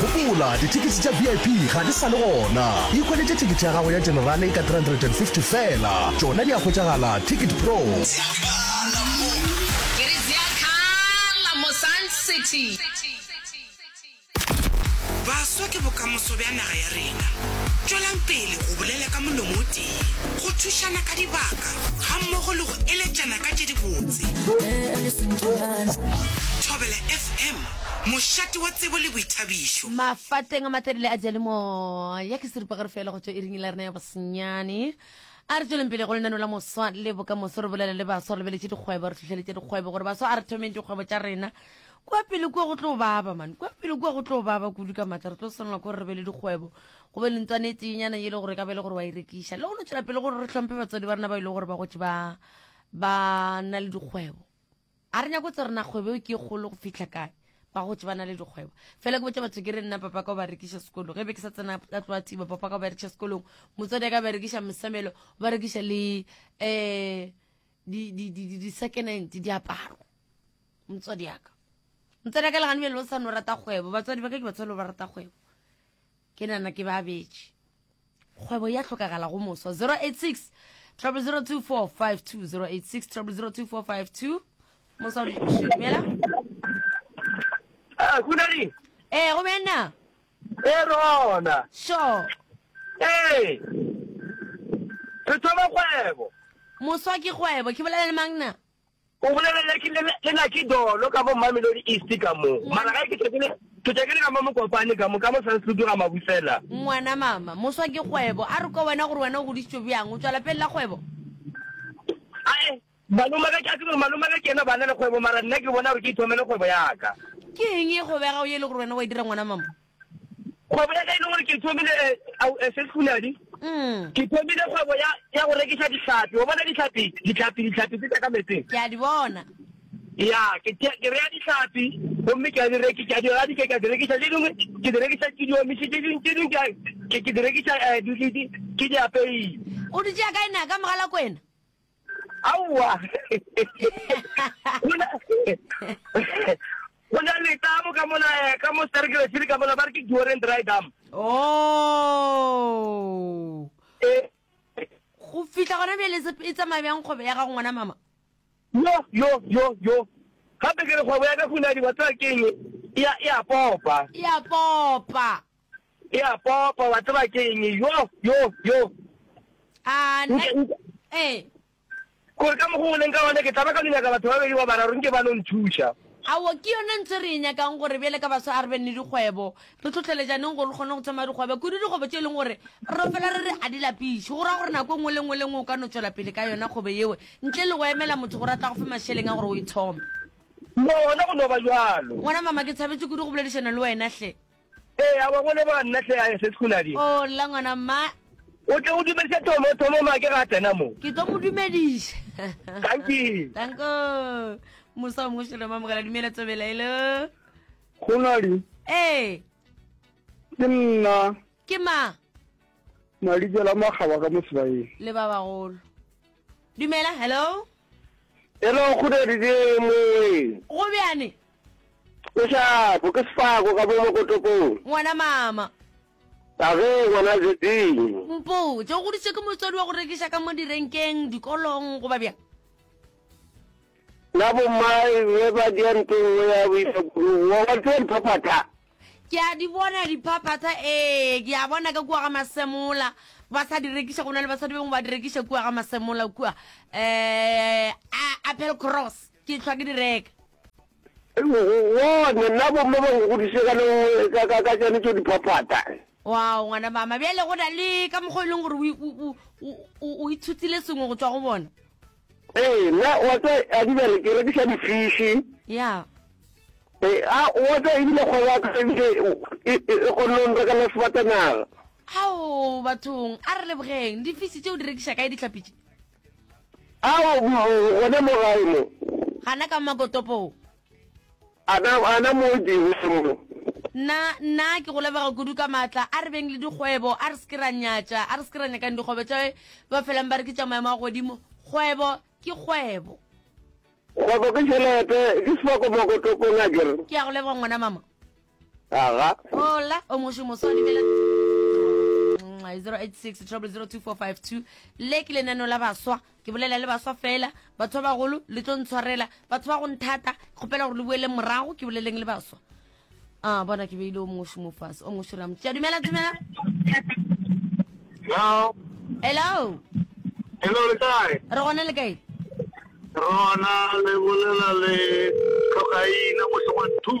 Gopola, dithekisi tša VIP ga di sa le gona. Ikhweletše thekete ya gago ya Generale ka R350 feela. Tšona di a hwetšagala Ticket Pro. Baswa ke bokamoso bja naga ya rena. Tšwelang pele go bolela ka molomo o tee, go thušana ka dibaka. gammogo le go eletšana ka tše dibotse. Thobela FM, mošate wa tsebo le boithabišo. Mafateng a matelele a diyalemoya ke seripagare fela go tšwa iring la rena ya bosenyane. A re tsweleng pele go lenano la moswa le bokamoso re bolela le baswa re lebeletše dikgwebo re tlhohleletša dikgwebo gore baswa a re thomeng dikgwebo tša rena kua pele kua go tlo baba man kua pele kua go tlo baba kudu ka maatla re tlo swanela ke gore re be le dikgwebo go be le ntswana e tsenyana e le gore ka be le gore wa e rekiša le go no tswela pele gore re tlhomphe batswadi ba rena ba e le gore ba gotse ba ba na le dikgwebo a re nyako tse rena kgwebo eo ke e kgolo go fitlha kae ba gotse ba na le dikgwebo fela ke botsa batho ke re nna papa ka o ba rekiša sekolo ge be ke sa tsena ka tloa thiba papa ka o ba rekiša sekolong motswadi ya ka ba rekiša mosamelo o ba rekiša le um di-second hand diaparo motswadi yaka motswadi ya ka legane bjale o sa no rata kgwebo batswadi ba ka ke batswadi ba rata kgwebo Ke nana ke ba betše. Kgwebo ya hlokagala go moso 086 0024520 086 0024520 moso dumela ah kuna ni eh go bena eh rona sure eh re thoma kgwebo moso ke kgwebo ke bolela le mangna O bolelele ke le le na ke dolo ka mo Mamelodi East ka mo. Mara ga ke tšhakile ke tšakile ka mo Mokopane ka mo ka mo sa se dira mabusela. Ngwana mama moswa ke kgwebo a re kwa wena gore wena o godisitswe byang o tswala pelela kgwebo. A e malome ga ke a tsebe malome ga ke yena bana le kgwebo mara nna ke bona gore ke ithomele kgwebo ya ka. Ke eng e kgwebo ya gago ye le gore wena wa e dira ngwana mama. kgwebo ya ka e le gore ke thomile eh, au eh, se fuladi mm. ke thomile kgwebo ya ya go rekiša dihlapi wa bona dihlapi dihlapi dihlapi tse tsa ka metseng ke a di bona ya ke ke- ke reya dihlapi gomme ke a di reki ke a di radi ke ke a di rekiša tše dingwe ke di rekiša ke di omise tše dingwe tše dingwe ke a- ke- ke di rekiša eh, di- di- di- ke di apeile o di tšea kae na ka mogalako ena aowa go na le tamo ka mola eh, ka mo serekele sele ka mola ba re ke duoren dry dam oh Eh, go fitlha gona bjale e se- e tsamaya bjang kgwebo ya gago ngwana mama yo yo yo yo gape ke re kgwebo ya ka kunadi wa tsaya keng ya ya popa e a popa E a popa, wa tseba ke eng? Yo, yo, yo. A, nna, ee. Gore ka mokgwa o leng ka gona, ke tla ba ka no nyaka batho ba bedi wa bararo, nke ba no nthuša. Awo, ke yona ntho e re e nyakang, gore bjale ka baswa a re beng le dikgwebo. Re hlohleletšaneng gore re kgone go tsamaya dikgwebo, kudu dikgwebo tše e leng gore re fela re re a di lapiše. Go ra gore nako e nngwe le nngwe le nngwe o ka no tšwela pele ka yona kgwebo yeo, ntle le go emela motho gore a tla go fe mašeleng a gore o e thome. Gona go no ba bjalo. Ngwana mama, ke thabetše kudu go boledišana le wena, hle. Ee, a wa go leboga nna hle a SS Khunadi. O lla ngwana mma. O tle o dumediše Thomo, Thomo make ga a tsena mo. Ke tlo mo dumediša. Danki. Danko. Mosa o mošolo mamogela dumela tsobela elo. Khunadi. Ee. Ke nna. Ke ma. Madikela makgaba ka mosebaeng. Le ba bagolo. Dumela, hello. Hello, Khunadi ke moeng. Go bjane. Kešapo, ke sefako ka mo mokotopong. Ngwana mama. Age, ngwana Zeding. Mpotše, o goditšwe ke motswadi wa go rekiša ka mo direnkeng, dikolong, goba bjang? Na bommae be ba dia nto nngwe ya boišakudugo? Wa wa tseba diphaphatha? Ke a di bona diphaphatha, ee, ke a bona ka kua ga Masemola ba sa di rekiša, go na le basadi bengwe ba di rekiša kua ga Masemola kua, um Applecross. Ke hlwa ke di reka. Gone, na bomme ba go godiše ka le nngwe ka, ka, ka tšone tšo di phaphata? Wow, ngwana mama, bjale go na le ka mokgwa e leng gore o, o, o, o, o, o itshutile sengwe go tšwa go bona. Ee, na wa tsa a di bere ke rekiša difiši. Ya. Ee, a wa tsa ebile kgwebo ya ka ebile e, e, e kgonne go nrekela sefatanaga. Ao, bathong, a re lebogeng. Difiši tše o di rekiša kae dihlapi tše? Ao, mm, gona mo gae mo. Gana ka makotopong. Ana, ana mo dingwe mo. Nna, nna ke go lebega kudu ka maatla. A re beng le dikgwebo, a re se ke ra nyatša, a re se ke ra nyakang dikgwebo tša ba felang ba re ke tša maemo a godimo. Kgwebo ke kgwebo. Kgwebo ke tšhelete, ke sefako makotopong a ke re. Ke a go leboga ngwana mama. Aga. Hola, o moši moswadi bela 086 002 le ke lenano la baswa ke bolela le baswa fela batho ba bagolo le tlo ntshwarela batho ba go nthata kgopela gore le boele morago ke boleleng le baswa a bona ke beile o moši mo fase o moši ramotse ya dumela dumela hello hello hello le kae re gone le kae rona le bolela le tlhogaina mošongwa two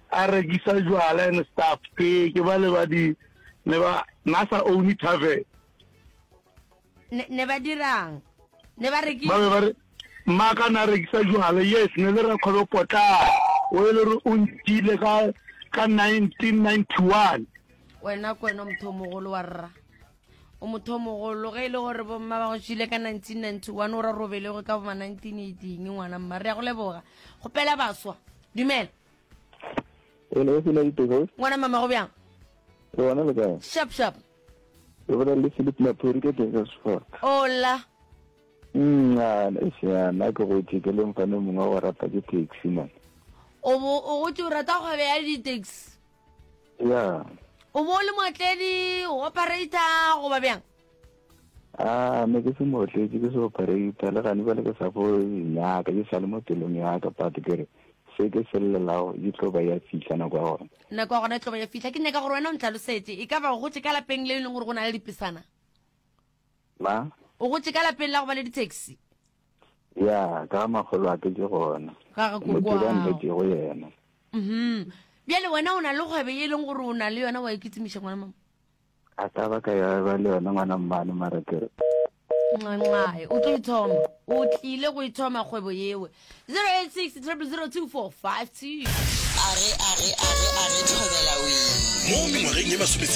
a rekisa jwala and stuff ke ke ba le ba di ne ba na sa own tavern ne ne ba dirang ne ba re ke ba be ba re maka na rekisa jwala yes ne le ra khobe potla o e le re o ntile ka ka 1991 wena ko wena motho o mogolo wa rra o motho o mogolo ge e le gore bomma ba go tšile ka 1991 o ra robelego ka boma 1918 ngwana mma re ya go leboga go pela baswa dumela Hello, e sena ditego. Ngwana mama go bjang? Ke bona le kae? Sharp sharp. Ke bona le Philip Maphori ke teng ka Sefora. Ola. Nna e sena na ke go tšeke le mfane mongwe wa rata ke taxi man. O bo o go tšo rata go be ya di taxi. Yeah. O bo le motledi, operator go ba bjang? a ah, me ke se motletse ke se operator le gane bale ke sa fo nyaka ke sale mo pelong yaka but ke re se ke se llelago e tlo ba ya fitlha nako ya gona nako ya gona e tlo ba ya fitlha ke nyaka gore wena o ntlhalosetse e ka ba gotse ka lapeng le e leng gore go na le dipesana ma o gotse ka lapeng la go ba le ditaxi ya ka magolo a ke ke gona motibanletego yena mhm bjale wena o na le kgwebe e leng gore o na le yona wa e kitsimiša ngwana mama a ka ba ka ya ba le yone ngwana mmane mara ke nqanqae o tlo ithoma o tlile go ithoma kgwebo yewe 086 0002452 a re a re a re a re thobela wee mo mengwageng ye masome